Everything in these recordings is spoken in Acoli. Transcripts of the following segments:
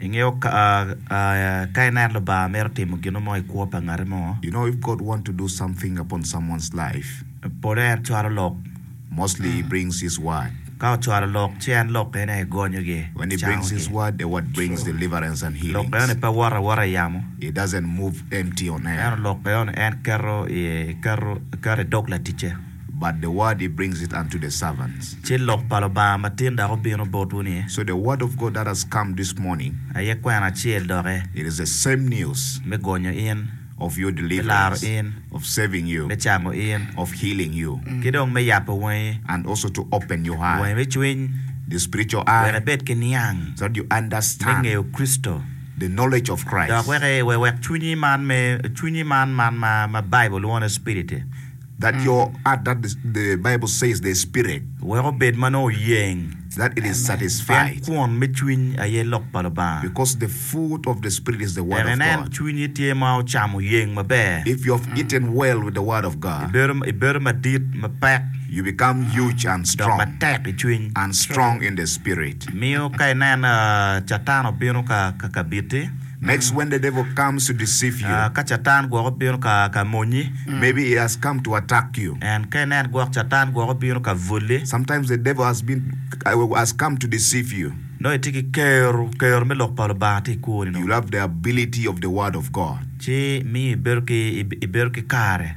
Ingeyo ka ineno Lubanga mito timo gin mo i kwo pa ngat mo? You know if God want to do something upon someone's life? Pole en cwalo lok. Mostly he brings his word. Ka ocwalo lok ci en lok ene aye gonyo gi. When he brings his word, the word brings deliverance and healings. Lok ene pe wot awota i yamo. It doesn't move empty on air. Ento lok ene en keto i dog laticce. But the word he brings it unto the servants. Ci lok pa Lubanga matin dok obino botwu ni. So the word of God that has come this morning. Aye kwena acel doki. It is the same news. Me gonyo in. Of your deliverance. Me laro in. Of saving you. Me cango in. Of healing you. Ki dong me yabo wangi. And also to open your eye. Wangi me cwiny. The spiritual eye. Wek ibed ki niang. So that you understand. Me ngeyo Kricito. The knowledge of Christ. Dok wek wek cwinyi man me cwinyi man man ma Bible lwongo ni spirit-ti. That your heart that the Bible says the spirit. Wek obed ma nongo oyeng. That it is satisfied. Pien kwon me cwiny aye lok pa Lubanga. Because the food of the spirit is the word of God. Wek inen cwinyi tye ma ocamo yeng maber. If you have eaten well with the word of God. Ibedo madit, mapek. You become huge and strong. Dok matek i cwiny. And strong in the spirit. Miyo ka inen Catan obino ka kabiti. Next when the devil comes to deceive you. Ka Catan gwok obino ka ka monyi. Maybe he has come to attack you. And ka inen gwok Catan gwok obino ka bwoli. Sometimes the devil has been has come to deceive you. Nongo itye ki kero kero me lok pa Lubanga tye i kwoni You nongo. love the ability of the word of God. Ci miyo ibedo ki ibedo ki kare.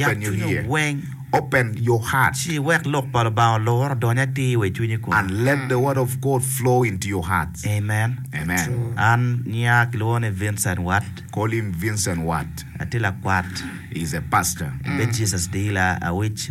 Yat cwinyo weng, ci iwek Lok pa Lubanga olur odony atir wa i cwinyi kunu. Amen. An nyinga kilwongo ni Vincent Watt. Atye lakwat. Abedo Jesus Dealer Awic.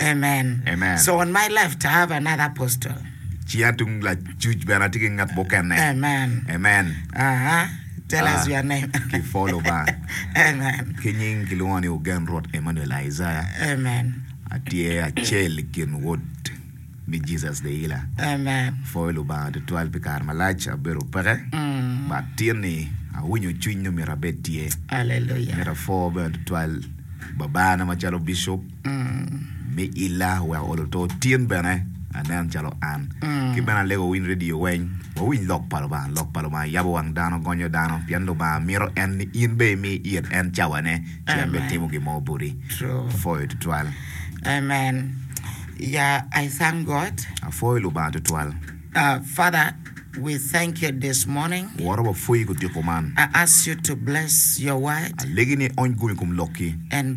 Amen. Amen. So on my left I have another apostle. Ci atung lacuc bene atye ki ngat mukene. Amen. Amen. Aha. Tell us Ah, your name. ki follow ba. Amen. Ki nying kilwongo ni Ogen Rwot Emmanuel Isaiah. Amen. Atye acel i kin wod me Jesus the Healer. Amen. Pwoyo Lubanga tutwal pi kare malac abedo peke. Mm. Ba tin ni awinyo cwiny ni myero abed tye. Hallelujah. Myero apwo bene tutwal babana macalo bishop. Mi illa wek olo to tin bene anen calo an. Ki bene alego wawiny redio weny, wawiny lok pa Lubanga. Lok pa Lubanga yabo wang dano, gonyo dano, pien Lubanga mito en ni in be imi it en cawane, ci en bene timo gin mo boti. Apwoyo tutwal. Amen. Ya I thank God. Apwoyo Lubanga tutwal. Uh, Father, we thank you this morning. Woro wapwoyi kutiko man. I ask you to bless your word Alegi ni iony gum i kom lokki. and bless